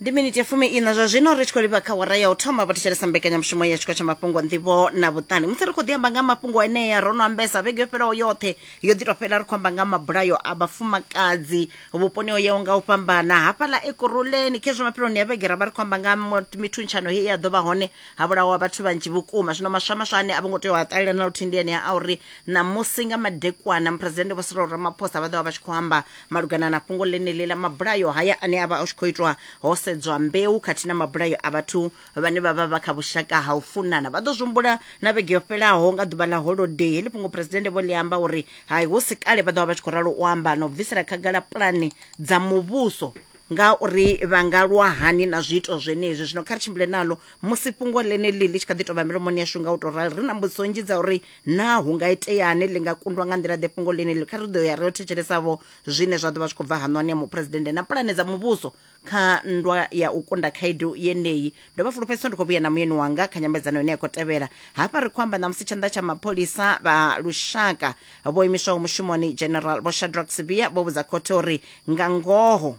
ndi miniti ya fumi ina zwa zwino ri tshi khou livha kha wara ya u thoma vhathetshelesa mbekanyamushumo ya tshiko tsha mafhungo nḓivho na vhuṱani musi ri khou ḓi amba nga mafhungo enea ro no ambesa vhege yo fhelaho yoṱhe yo ḓi tou fhela ri khou amba nga mabulayo a vhafumakadzi vhuponi o yaho nga u fhambana hafhaḽa ekuruleni khezwo mafheloni ya vhege ra vha ri khou amba nga mo- mithuntshanyo he ya ḓo vha hone ha vhulawa vhathu vhanzhi vhukuma zwino maswa maswa ane a vho ngo tea u a ṱalela na luthihi ndi enea a uri ṋamusi nga madekwana muphuresidennde vho sirolo ramaphosa vha ḓo vha vha tshi khou amba malugana na fhungo ḽeneḽi ḽa mabulayo haya ane a vha a tshi khou itwa ho sedzwa mbeu khathihi na mabulayo a vhathu vhane vha vha vha kha vhushaka ha u funana vha ḓo zwihumbula na vhege yo fhelaho nga ḓuvha ḽa holodei heḽi fhungo phresidennde vho ḽi amba uri hai hu si kale vha ḓo vha vha tshi khou ralo u amba na u bvisela khagala pulane dza muvhuso nga uri vha nga lwa hani na zwiito zwenezwi zwino kha ri tshimbile nalo musi fhungo ḽeneḽi ḽi tshi kha ḓi tou vha milomoni yashu nga u tou rali ri na mbudziso nnzhi dza uri naa hu nga iteani ḽi nga kundwa nga nḓila ḓe fhungo ḽine kha ri ḓo ya ro thetshelesavho zwine zwa ḓo vha zwi khou bva haṋwani ya muphuresidennde na pulane dza muvhuso kha nndwa ya u kunda khaedu yeneyi ndo vha fulufhedzisa ndi khou vhuya na muyeni wanga kha nyambedzano ine ya khou tevhela hafha ri khou amba ṋamusi tshanḓa tsha mapholisa vha lushaka vho imiswaho mushumoni general vho shadrack sibia vho vhudza khothe uri nga ngoho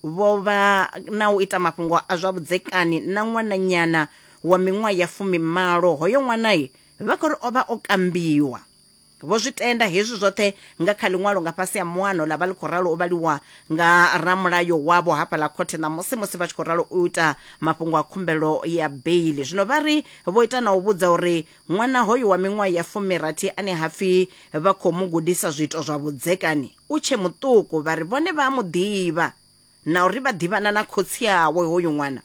vho vha na u ita mafhungo a zwa vhudzekani na ṅwananyana wa miṅwaha ya fumimalo. Hoyo ṅwana vha khou ri o vha o kambiwa. Vho zwi tenda hezwi zwoṱhe nga kha ḽiṅwalo nga fhasi ha muano ḽa vha ḽi khou ralo u vhaliwa nga ramulayo wavho hafhaḽa khothe ṋamusi musi vha tshi khou ralo u ita mafhungo a khumbelo ya beili. Zwino vha ri vho ita na u vhudza uri ṅwana hoyu wa miṅwaha ya fumirathi ane ha pfi vha khou mu gudisa zwiito zwa vhudzekani, U tshe muṱuku, vha ri vhone vha a mu ḓivha na uri vha ḓivhana na khotsi awe hoyu ṅwana.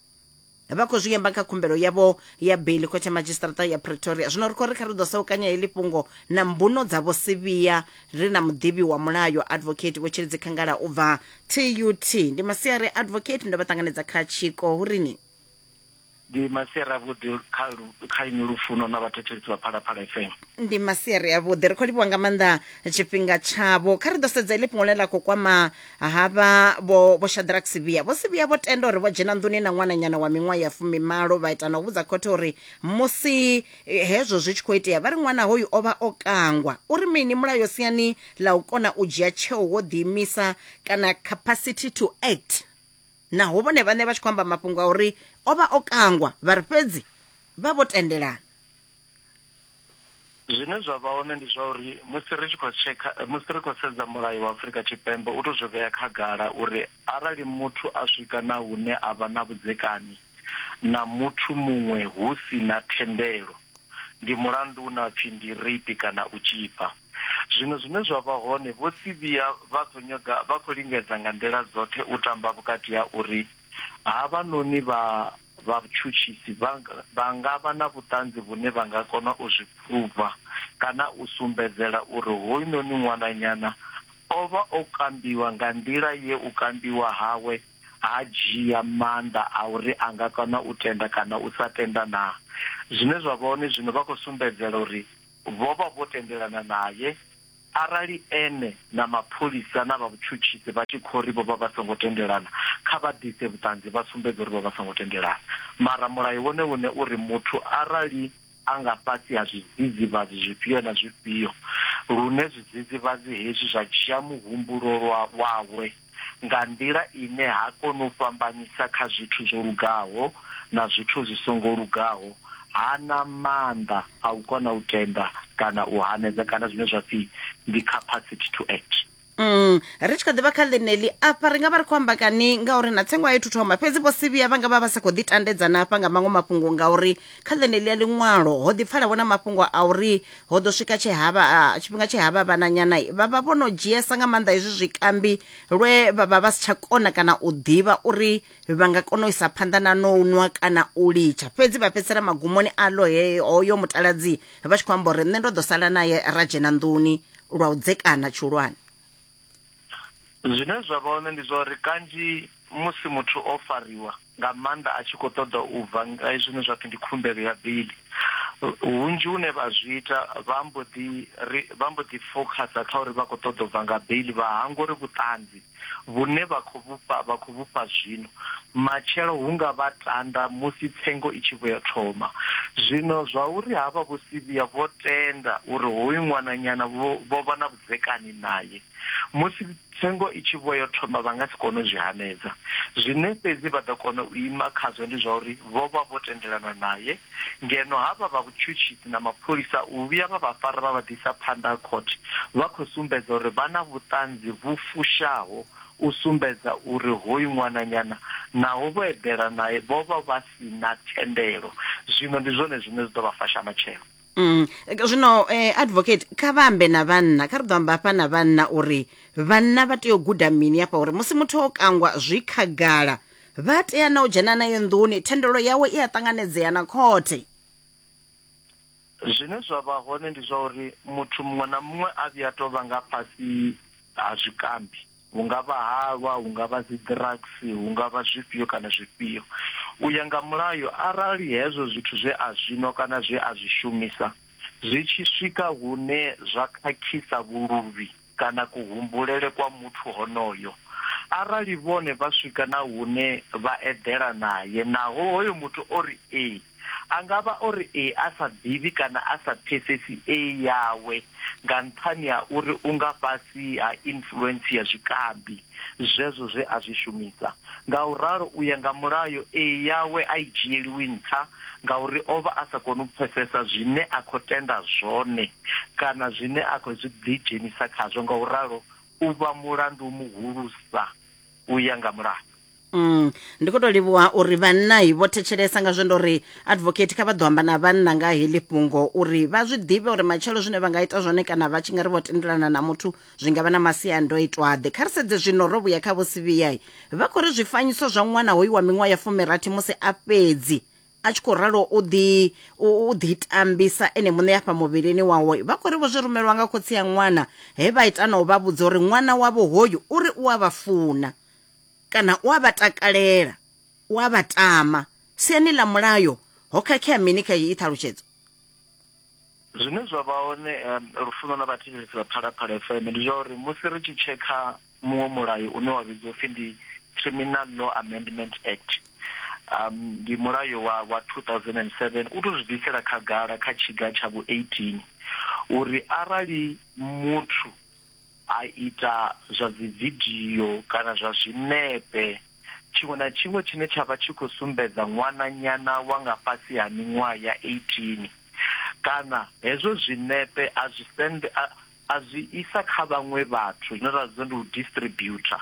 Vha khou zwi amba kha khumbelo yavho ya beiḽi khothe ya madzhisiṱaraṱa ya Pretoria. Zwino ri khou ri kha ri ḓo saukanya heḽi fhungo na mbuno dza Vho Sibiya ri na muḓivhi wa mulayo Advocate Vho Tshilidzi Khangala u bva TUT. Ndi masiari Advocate ndo vha ṱanganedza kha tshiko hu ri ni. Ndi masiari avhuḓi kha lu, kha inwi lufuno na vhathetshelesi vha Phalaphala FM. ndi masiari avhuḓi ri khou livhuwa nga maanḓa tshifhinga tshavho kha ri ḓo sedza iḽi fhungo ḽe ḽa khou kwama havha vho vho shadrack sivhiya vho sivhiya vho tenda uri vho dzhena nḓuni na ṅwananyana wa miṅwaha ya fumimalo vha ita na u vhudza khothe uri musi eh, hezwo zwi tshi khou itea vha ri ṅwana hoyu o vha o kangwa uri mini mulayo siani ḽa u kona u dzhia tsheo wo ḓiimisa kana capacity to act naho vhone vhaṋe vha tshi khou amba mafhungo a uri o vha o kangwa vha ri fhedzi vha vho tendelana zwine zwa vha hone ndi zwa uri musi ri tshi khou tshekha musi ri khou sedza mulayo wa Afrika Tshipembe u to zwi vhea khagala uri arali muthu a swika na hune a vha na vhudzekani na muthu muṅwe hu si na thendelo ndi mulandu u na pfi ndi rape kana u tzhipa Zwiṅwe zwine zwa vha hone, Vho Sibiya vha khou nyaga, vha khou lingedza nga nḓila dzoṱhe u tamba vhukati ha uri havhanoni vha vhatshutshisi vha, vha nga vha na vhuṱanzi vhune vha nga kona u zwi phuruva kana u sumbedzela uri hoyunoni ṅwananyana o vha o kambiwa nga nḓila ye u kambiwa hawe ha dzhia maanḓa a uri a nga kona u tenda kana u sa tenda naa. Zwine zwa vha hone zwino, vha khou sumbedzela uri. Vho vha vho tendelana nae. Arali ene na mapholisa na vha vhutshutshisi vha tshi khou ri vho vha vha songo tendelana, kha vha ḓise vhuṱanzi vha sumbedze uri vho vha songo tendelana. Mara mulayo wone une u ri muthu arali a nga fhasi ha zwidzidzivhadzi zwifhio na zwifhio, lune zwidzidzivhadzi hezwi zwa dzhia muhumbulo lwa wawe, nga nḓila ine ha koni u fhambanyisa kha zwithu zwo lugaho na zwithu zwi songo lugaho, ha na maanḓa a u kona u tenda kana u hanedza kana zwine zwa pfi ndi capacity to act. Mm, ri tshi kha ḓivha kha ḽeneḽi afha ri nga vha ri khou amba kani ngauri na tsengo a yo thuthoma fhedzi vho sivhiya vha nga vha vha sa khou ḓitandedzana hafha nga maṅwe mafhungo ngauri kha ḽeneḽi ya ḽiṅwalo ho ḓipfala vhona mafhungo a uri ho ḓo swika tshe havha ah, tshifhinga tshe havha vhananyana vha vha vho no dzhiesa nga maanḓa hezwi zwikambi lwe vha vha vha si tsha kona kana u ḓivha uri vha nga kona u isa phanḓa na no nwa kana u litsha fhedzi vha fhedzisela magumoni a lo hoyo mutaladzi vha tshi khou amba uri nṋe ndo ḓo sala naye ra dzhena nḓuni lwa u dzekana tshihulwane zwine zwa vha hone ndi zwa uri kanzhi musi muthu o fariwa nga maanḓa a tshi khou ṱoḓa u bva ngei zwine zwa pfi ndi khumbelo ya bili, hunzhi hune vha zwi ita vha mbo ḓi ri vha mbo ḓi fokhasa kha uri vha khou ṱoḓa u bva nga bili vha hangwa uri vhuṱanzi vhune vha khou vhufha vha khou vhufha zwino matshelo hu nga vha tanda musi tsengo i tshi vhuya thoma. Zwino zwa uri havha Vho Sivia vho tenda uri hoyu ṅwananyana vho vha na vhudzekani nae musi Tsengo i tshi vho yo thoma vha nga si kone u zwi hanedza. Zwine fhedzi vha ḓo kona u ima khazwo ndi zwa uri vho vha vho tendelana nae, ngeno havha vha vhutshutshisi na mapholisa u vhuya vha vha fara vha vha ḓisa phanḓa ha khothe vha khou sumbedza uri vha na vhuṱanzi vhu fushaho u sumbedza uri hoyu ṅwananyana naho vho eḓela nae vho vha vha si na thendelo. Zwino ndi zwone zwine zwi ḓo vha fasha matshelo. Mm. zwino eh, advocate kha vha ambe na vhanna kha ri ḓo amba hafha na vhanna uri vhanna vha tea u guda mini hafha uri musi muthu o kangwa zwi khagala vha tea na u dzhena naye nḓuni thendelo yawe i a ṱanganedzea na khothe zwine zwa vha hone ndi zwa uri muthu muṅwe na muṅwe a vhuya tou vha nga fhasi ha zwikambi hu nga vha halwa, hu nga vha dzi drugs, hu nga vha zwifhio kana zwifhio. U ya nga mulayo arali hezwo zwithu zwe a zwi nwa kana zwe a zwi shumisa zwi tshi swika hune zwa khakhisa vhuluvhi kana kuhumbulele kwa muthu honoyo, arali vhone vha swika na hune vha eḓela nae naho hoyo muthu o ri ee, A nga vha o ri ee a sa ḓivhi kana a sa pfesesi ee yawe nga nṱhani ha uri u nga fhasi ha influence ya zwikambi zwezwo zwe a zwi shumisa. Ngauralo, u ya nga mulayo, ee yawe a i dzhieliwi nṱha ngauri o vha a sa koni u pfesesa zwine a khou tenda zwone kana zwine a khou zwi ḓidzhenisa khazwo, ngauralo u vha mulandu muhulusa u ya nga mulayo. Mm, ndi khou tou livhuwa uri vhanna i vho thetshelesa nga zwendo uri advocate kha vha ḓo amba na vhanna nga heḽi fhungo uri vha zwi ḓivhe uri matshelo zwine vha nga ita zwone kana vha tshi nga ri vho tendelana na muthu zwi nga vha na masiandoitwaḓe kha ri sedze zwino ro vhuya kha vhosivhiyai vha khou ri zwifanyiso zwa ṅwana hoyu wa miṅwaha ya fumirathi musi a fhedzi a tshi khou ralo u ḓi u ḓi tambisa ene muṋe afha muvhilini wawe vha khou ri vho zwi rumelwa nga khotsi ya ṅwana he vha ita na u vha vhudza uri ṅwana wavho hoyu uri u a vha funa kana u a vha takalela u a vha tama siani ḽa mulayo ho khakhea mini kha iyi ṱhalutshedzo zwine zwa vha hone um, lufuno lwa vhathetshelesi vha phalaphala fm ndi zwa uri musi ri tshi tshekha muṅwe mulayo une wa vhidzwa upfi ndi criminal law amendment act um ndi mulayo wa wa 2007 u to zwi bvisela khagala kha tshiga tsha vhu 18 uri arali muthu a ita zwa dzividio kana zwa zwinepe, tshiṅwe na tshiṅwe tshine tsha vha tshi khou sumbedza ṅwananyana wa nga fhasi ha miṅwaha ya 18 kana hezwo zwinepe a zwi send a a zwi isa kha vhaṅwe vhathu zwine ra zwi ndi u distributor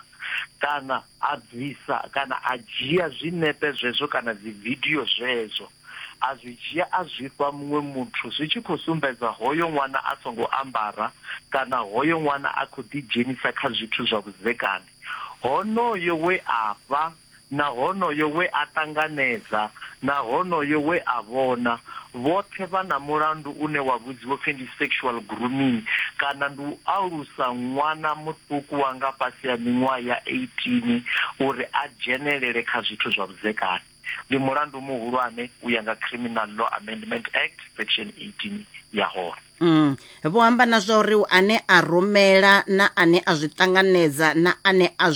kana a bvisa kana a dzhia zwinepe zwezwo kana dzividio zwezwo. a zwi dzhia a zwi fha muṅwe muthu zwi tshi khou sumbedza hoyo ṅwana a songo ambara kana hoyo ṅwana a khou ḓidzhenisa kha zwithu zwa vhudzekani. Honoyo we a fha na honoyo we a ṱanganedza na honoyo we a vhona, vhoṱhe vha na mulandu une wa vhudziwa u pfi ndi sexual grooming kana ndi u alusa ṅwana muṱuku wa nga fhasi ha miṅwaha ya 18 uri a dzhenelele kha zwithu zwa vhudzekani. Ndi mulandu muhulwane u ya nga Criminal Law Amendment Act section 18 ya hone. Mm. Vho amba na zwa uri ane a rumela na ane a zwi ṱanganedza na ane a zwi